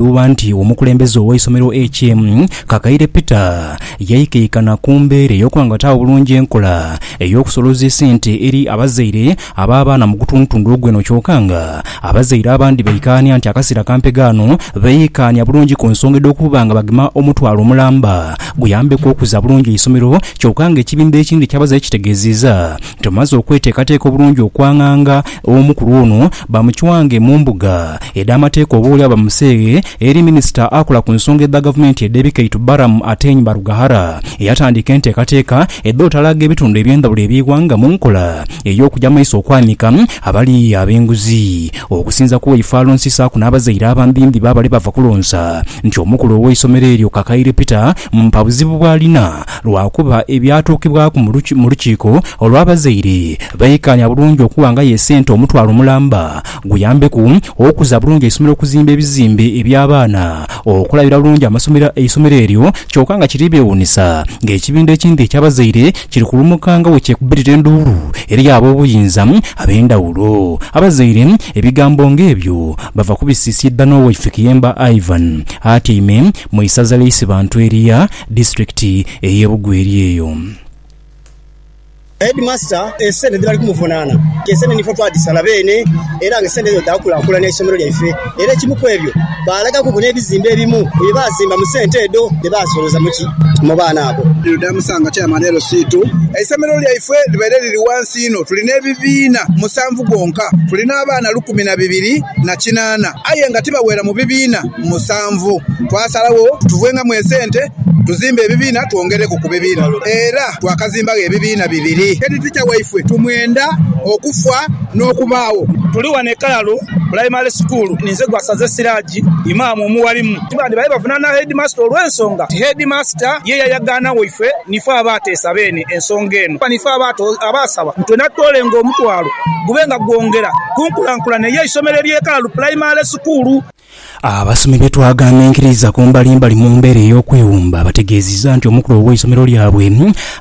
Bweghuba nti omukulembeze ow'eisomero HM. Kakaire Peter yaikaikana ku mbeera ey'okughangata obulungi enkola ey'okusoloza esente eri abazaire ab'abaana mu gutundutundu ogweno kyoka nga abazaire abandi baikaania nti akaseera kampe ghano beikaania bulungi ku nsonga edh'okuba nga bagema omutwalo omulamba guyambeku okuza bulungi eisomero kyoka nga ekibinba ekindhi eky'abazaire kitegeeziiza Tumaze okweteekateeka obulungi okwanganga omukulu ono, bamuchwange mu mbuga edh'amateeka oboolyawo bamuseeghe eri minisita akola ku nsonga edha gavumenti edh'ebikaitu Balaam Ateny Barughahara eyatandiika enteekateeka edh'otalaaga ebitundu eby'endhawulo eby'eighanga mu nkola ey'okuja mu maiso okwanika abali ab'enguzi okusinza ku waife alonsi saaku n'abazaire abambiimbi b'abali bava kulonsa nti omukulu ow'eisomero eryo Kakaire Peter Mpa buzibu bw'alina lwakuba ebyatuukibwaku mu lukiiko olw'abazaire baikaanya bulungi okuwangayo esente omutwalo mulamba guyambeku okuza bulungi eisomero okuzimba ebizimbe eby'abaana okulabira bulungi amasomero eisomero eryo kyoka nga kiri beewuunisa ng'ekibinda ekindi eky'abazaire kiri kulumuka nga bwekyekubirira enduulu eri ab'obuyinza ab'endhawulo Abazaire ebigambo ng'ebyo bava kubisiisiidha n'Owaife Kiyemba Ivan atyaime mu isaza ly'Isibantu erya Disiturikiti ey'e Bugwe eri eyo. Headmaster esente dhebali kumuvunaana ke sente nife twadhisala beene era nga esente edho dhaakulaakulanya eisomero lyaife era ekimu ku ebyo baalagaku ku n'ebizimbe ebimu ku bye baazimba mu sente edho dhe baasoloza mu ki mu baana abo. Damusanga Chairman LC ii, Eisomero lyaife libaire liri ghansi inho, tuli n'ebibiina musanvu gwonka, tuli n'abaana lukumi na bibiri na kinaana aye nga tibaweera mu bibiina. musanvu. Twasalagho tuvenghamu esente tuzimbe ebibiina twongereku ku bibiina era twakazimbagho ebibiina bibiri. Heditica waifwe tumwenda okufa n'okubaagho. Tuli wano e Kalalu Pulayimale Sukuulu. Ninze gwasaze Siraji Imam omuwalimu. Bandi baye bavunaana Heedimasita olw'ensonga nti Heedimasita ye yayagaana waife nife abaateesa beene ensonga eno kuba nife abaasaba nti twena tutoolenga omutwalo gube nga gwongera ku nkulankulana ey'eisomero ly'e Kalalu Pulayimale Sukuulu. Abasomi be twaghaanha enkiririza ku mbalimbali mu mbeera ey'okwewumba bategeezizza nti omukulu ow'eisomero lyabwe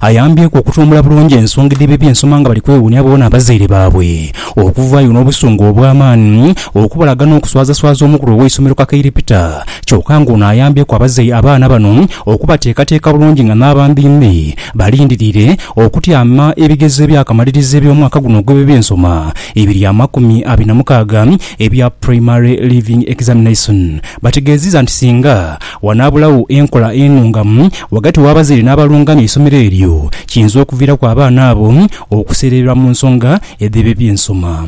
ayambyeku okutumbula bulungi ensonga edh'ebyo eby'ensoma nga bali kwewuunia boona abazaire baabwe okuvaayo n'obusungu obw'amaani okubalaga n'okuswazaswaza omukulu ow'eisomero Kakaire Peter kyoka nga ono ayambyeku abaana bano okubateekateeka bulungi nga n'abambiimbi balindiriire okutyama ebigezo ebyakamaliriza eby'omwaka guno ogw'eby'ensoma ebiri amakumi abiri na mukaaga Ebya Primary Leaving Examination bategeeziza nti singa wanaabulagho enkola enungamu ghagati w'abazaire n'abalungamya eisomero eryo, kiyinza okuviiraku abaana abo okuseerererwa mu nsonga edh'eby'ensoma.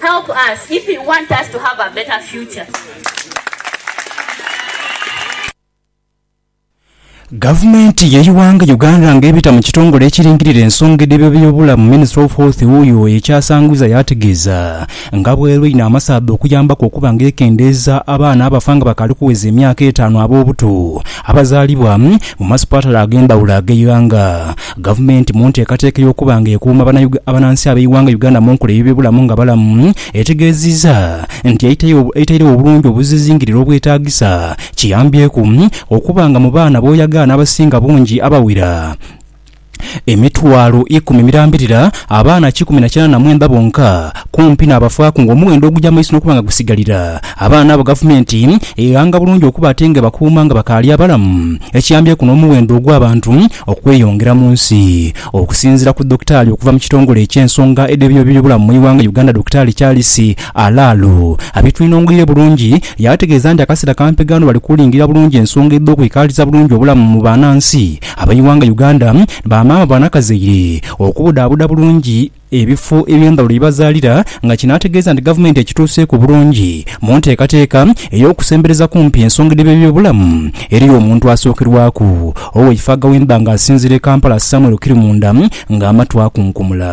Help us if you want us to have a better future. Gavumenti y'eighanga Uganda nga ebita mu kitongole ekiringirira ensonga edh'eby'obulamu Ministry of Health wuuyo ekyasangwiza yaategeeza nga bw'erina amasaadha okuyambaku okuba nga ekendeeza abaana abafa nga bakaali kuweza emyaka etaanu ab'obuto abazaalibwa mu masipaatale ag'endhawulo ag'eighanga. Gavumenti mu nteekateeka ey'okuba nga ekuuma banansi ab'eighanga Uganda mu nkola ey'ebyobulamu nga balamu, etegeezizza nti eitairegho obulungi obuzizingirire obwetaagisa kiyambyeku okuba nga mu baana b'oyagaana abasinga bungi abawera emitwalo ikumi mirambirira abaana kikumi na kinaana na mwenda bonka kumpi n'abafaaku ng'omughendo oguja mu maiso n'okuba nga gusigalira abaana abo gavumenti eghanga bulungi okuba ate ng'ebakuuma nga bakaali abalamu, ekiyambyeku n'omughendo ogw'abantu okweyongera mu nsi. Okusinziira ku Dokitaali okuva mu kitongole eky'ensonga edh'eby'ebyobulamu mu ighanga Uganda Dokitaali Charles Alalu abitwinong'eire bulungi yaategeeza nti akaseera kampi gano bali kulingirira bulungi ensonga edh'okwikaaliza bulungi obulamu mu banansi ab'eighanga Uganda, bamaama, banakazaire, okubudhaabuda bulungi ebifo eby'endhawulo ye bazaalira nga kino ategeeza nti Gavumenti ekituuseeku bulungi mu nteekateeka ey'okusembereza kumpi ensonga edh'eby'ebyobulamu eri omuntu asookerwaku Oweifaaga w'emba nga asinziira e Kampala Samuel Kirimunda nga amatu akunkumula.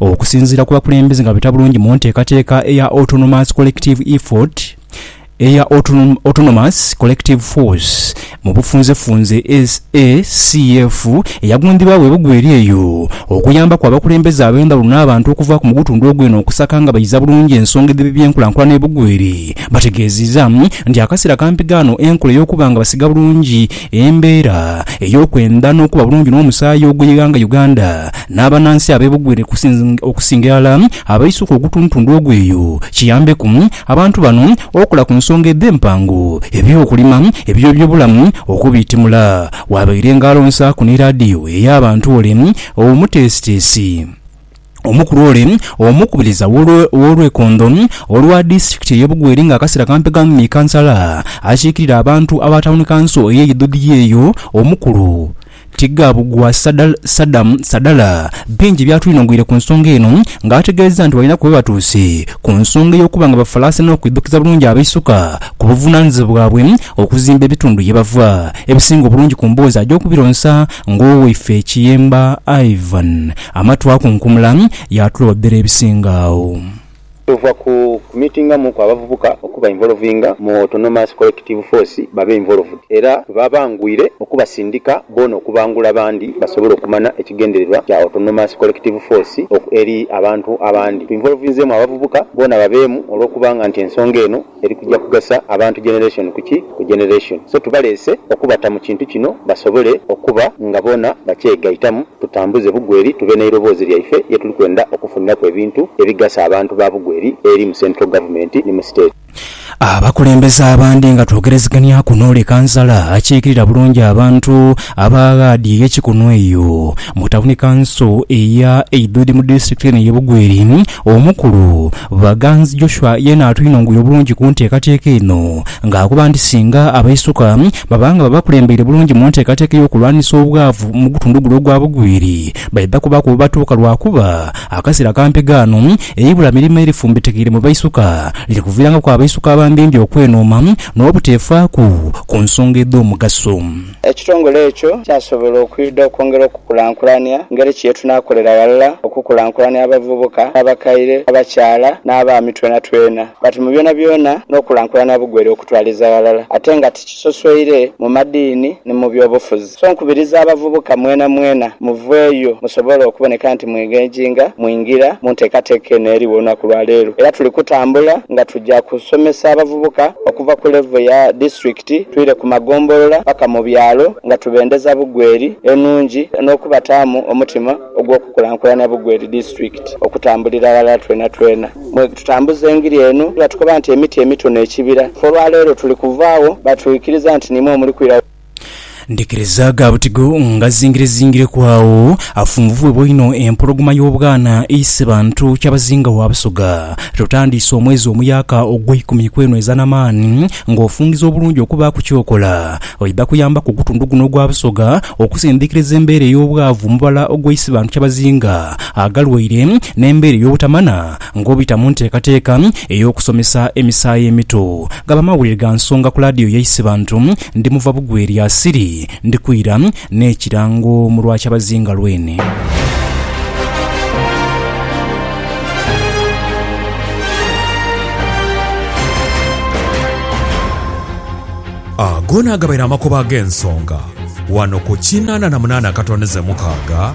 Okusinziira ku bakulembeze nga bita bulungi mu nteekateeka eya Autonomous Collective Effort eya Autonomous Collective Force mu bufunzefunze, ACF, eyagundiibwagho ebugu eri eyo okuyambaku abakulembeze ab'endhawulo n'abantu okuva ku mugutundu ogw'eno okusaka nga bayiza bulungi ensonga edh'ebibyenkulankulana ebugu eri, bategeeziiza nti akaseera kampi ghano enkola ey'okuba nga basiga bulungi Embeera ey'okwenda n'okuba bulungi n'omusaayi oguyighanga Uganda n'abanansi abebugwire okusinga irala abaisuka ogutundutundu ogwo eyo kiyambeku abantu bano okola ku nsonga edh'empango eby'okulima eby'ebyobulamu okubiitimula wabaire nga alonsaaku ni laadiyo ey'abantu ole omuteesiteesi. Omukulu ole omukubiriza w'olwekondo olwa disitulikiti ey'e Bugweri nga akasera kampi ghamu ni kansala akiikirira abantu aba tawuni kanso ey'e Idhudhia eyo omukulu Tighabugwa Sadam Sadala bingi byatwinhogweire ku nsonga eno nga ategeeza nti balinaku webatuuse ku nsonga ey'okuba nga bafalaasa n'okwidhukiza bulungi abaisuka ku buvunanizibwa bwabwe okuzimba ebitundu yebava ebisinga obulungi ku mboozi agya okubironsa Ng'owaife Kiyemba Ivan ama twakunkumula, yaatulobera ebisinga agho. Tova ku kumitingamuku abavubuka okuba involvinga mu Autonomous Collective Force babe involved era tubabangwire okubasindika boona okubangula abandi basobole okumana ekigendererwa kya Autonomous Collective Force eri abantu abandi. Tuinvolvinzeemu abavubuka boona babeemu olw'okubanga nti ensonga eno Eri kuja kugasa abantu generation ku ki ku generation so tubaleese okubata mu kintu kino basobole okuba nga boona bakyegaitamu tutambuze Bugweri tube n'eiroboozi lyaife ye tuli kwenda okufuniraku ebintu ebigasa abantu ba Bugweri eri mu central government ni mu state. Abakulembeze abandi nga twogereziganiaku n'ole kansala akiikirira bulungi abantu aba ghaadi ye Kikunu eyo mu tawuni kanso eya Eidhudi mu disitulikiti eno ye Bugweri, Omukulu, Baganzi Joshua yeena atwinongoya obulungi ku nteekateeka eno nga akoba nti singa abaisuka baba nga babakulembeire bulungi mu nteekateeka ey'okulwanisa obwavu mu gutundu guno ogwa Bugwiri baidha kubaku webatuuka lwakuba akaseera kampi ghano eibula mirimo erifumbitekeire mu baisuka liri kuviirangaku abaisuka abambimbi okwenooma n'obuteefaaku ku nsonga edh'omugaso. Ekitongole ekyo kyasobola okwidha okwongera okukulankulania ngeri ki ye tunaakolera ghalala okukulankulania abavubuka n'abakaire, abakyala n'abaami twenatwena but mu byonabyona n'okulankulania bugwere okutwaliza ghalala ate nga tikisosweire mu madiini ni mu byobufuzi. So nkubiriza abavubuka mwenamwena muveeyo musobole okuboneka nti mwengenginga mwingira mu nteekateeka eno eriwo olunaku lwa leero era tuli kutambula nga tuja kusomesa abavubuka okuva ku level ya District, Ti twire ku magombolola paka mu byalo nga tubendeza Bugweri enhungi n'okubataamu omutima ogw'okukulankulanya Bugweri disiturikiti okutambulira ghalala twenatwena mwe tutambuza engiri eno. Batukoba nti emiti emito n'ekibira. Ffe olwaleero tuli kuvaagho batwikiriza nti nimwo omuli kwira. Ndhikiriza gha butigo ngazingirezingireku agho afunvubwebwa inho empologoma y'obwana eise bantu kyabazinga wa Busoga. Tutandiise omwezi omuyaaka ogweikumi kwenhweza na maani ng'ofungiza obulungi okubaaku kyokola. Oidha kuyambaku ogutundu guno ogwa Busoga okusindhikiriza embeera ey'obwavu mu bala ogweise bantu kyabazinga agalwaire n'embeera ey'obutamana Ng'obita mu nteekateeka ey'okusomesa emisaayi emito, ghaba amawulire ga nsonga ku laadiyo yaise bantu. Ndi muva bugwe lya Siri, ndi kwira n'ekirango mu lwa kyabazinga lwene. Ago naagabaire amakoba ag'ensonga ghano ku kinaana na munaana akatondeze mukaaga.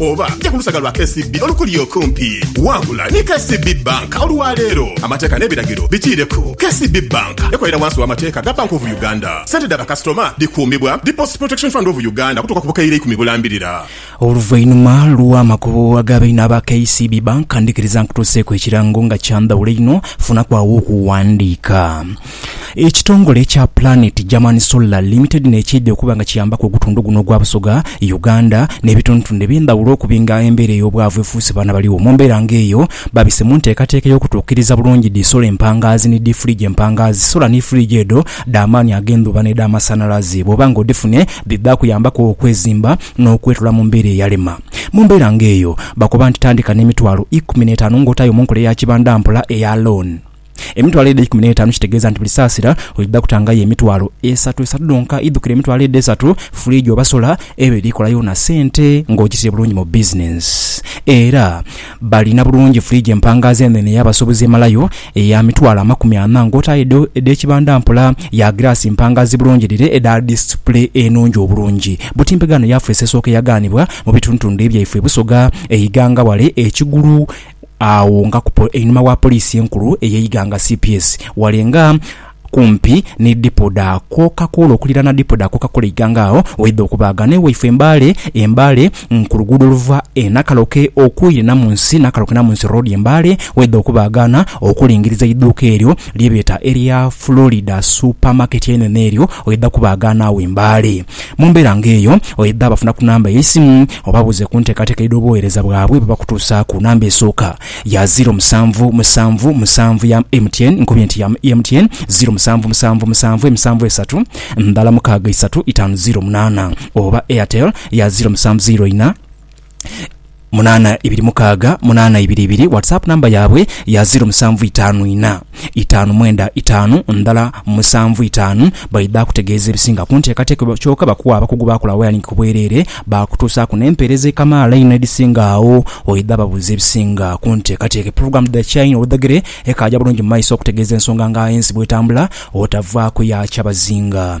Oba ja ku lusaga lwa KCB olukuli okumpi. Wangula ni KCB Bank olwa leero. Amateeka n'ebiragiro bitiireku. KCB Bank ekolera wansi w'amateeka ga Bank of Uganda. Sente dha bakasitoma dhikuumibwa Deposit Protection Fund of Uganda okutuuka ku bukaire ikumi bulambirira. Oluvainhuma lw'amakubo aga baine aba KCB Bank, ndhikiriza nkutuuseeku ekirango nga kya ndhawulo einho. Funaku agho okuwandiika. Ekitongole kya Planet German Solar Limited n'ekyaidha okuba nga kiyambaku ogutundhu guno ogwa Busoga, Uganda n'ebitundhutundhu eby'endhaghulo okubi nga embeera ey'obwavu efuuse baana baligho. Mu mbeera nga eyo, babise mu nteekateeka ey'okutuukiriza bulungi dhi sola empangaazi ni dhi fridge empangaazi. Sola ni fridge edho dha maani ag'endhuba n'edhamasanhalaze bw'oba nga odhifune dhidha kuyambaku okwezimba n'okwetula mu mbeera eyalema. Mu mbeera nga eyo, bakoba nti tandika n'emitwalo ikumi n'etaanu ng'otaayo mu nkola eya kibandampola eya loan. Emitwalo edho eikumi n'etaanu kitegeeza nti buli saasira oidha kutangayo emitwalo esatu esatu dhonka. Idhukira emitwalo edho esatu, furiigi oba sola eba eri kola yoona sente ng'ogitiire bulungi mu bizinensi. Era balina bulungi furiigi empangaazi enhenhe ey'abasuubuzi emalayo eya mitwalo amakumi ana ng'otaayo edho edh'ekibanda mpola, ya giraasi mpangaazi bulungi dhire edha disipule enungi obulungi. Butimpe ghano yaafeesi esooka eyagaanibwa mu bitundutundu ebyaifwe e Busoga, e Iganga wale, e Kigulu, agho nga ku einhuma wa Poliisi enkulu eye Iganga cps ghale nga kumpi ni dipo dha Coca-Cola okuliraana dipo dha Coca-Cola Iganga agho waidha okubaagana ewaifwe e Mbale e Mbale ku luguudo oluva e Nakaloke okwire Namunsi Nakaloke Namunsi Road e Mbale waidha okubaagana okulingiriza eiduuka eryo lye beeta erya Florida Super Market einhenhe eryo waidha kubaagana agho e Mbale. Mu mbeera ng'eyo, oidha bafuna ku namba y'eisimu obabuuze ku nteekateeka edh'obuweereza bwabwe bwe bakutuusa ku namba esooka ya ziro musanvu musanvu musanvu ya MTN, nkubye nti ya MTN, ziro musanvu musanvu musanvu emisanvu esatu ndhala mukaaga isatu itaanu ziro munaana, oba Airtel ya ziro musanvu ziro ina. munana ibiri mukaaga munana ibiri ibiri. Whatsapp namba yaabwe ya ziro musanvu itaanu ina itaanu mwenda itaanu ndala musanvu itaanu. Baidha kutegeeza ebisinga ku nteekateeka kyoka bakuwa abakugu baakola wayaringi ku bwereere baakutuusaaku n'empeereza ekamaala einho edhisinga agho. Oidha babuuza ebisinga ku nteekateeka epulogulaamu edhidhakyainho oludhegere ekaaja bulungi mu maiso okutegeeza ensonga nga ensi bw'etambula otavaaku ya kyabazinga.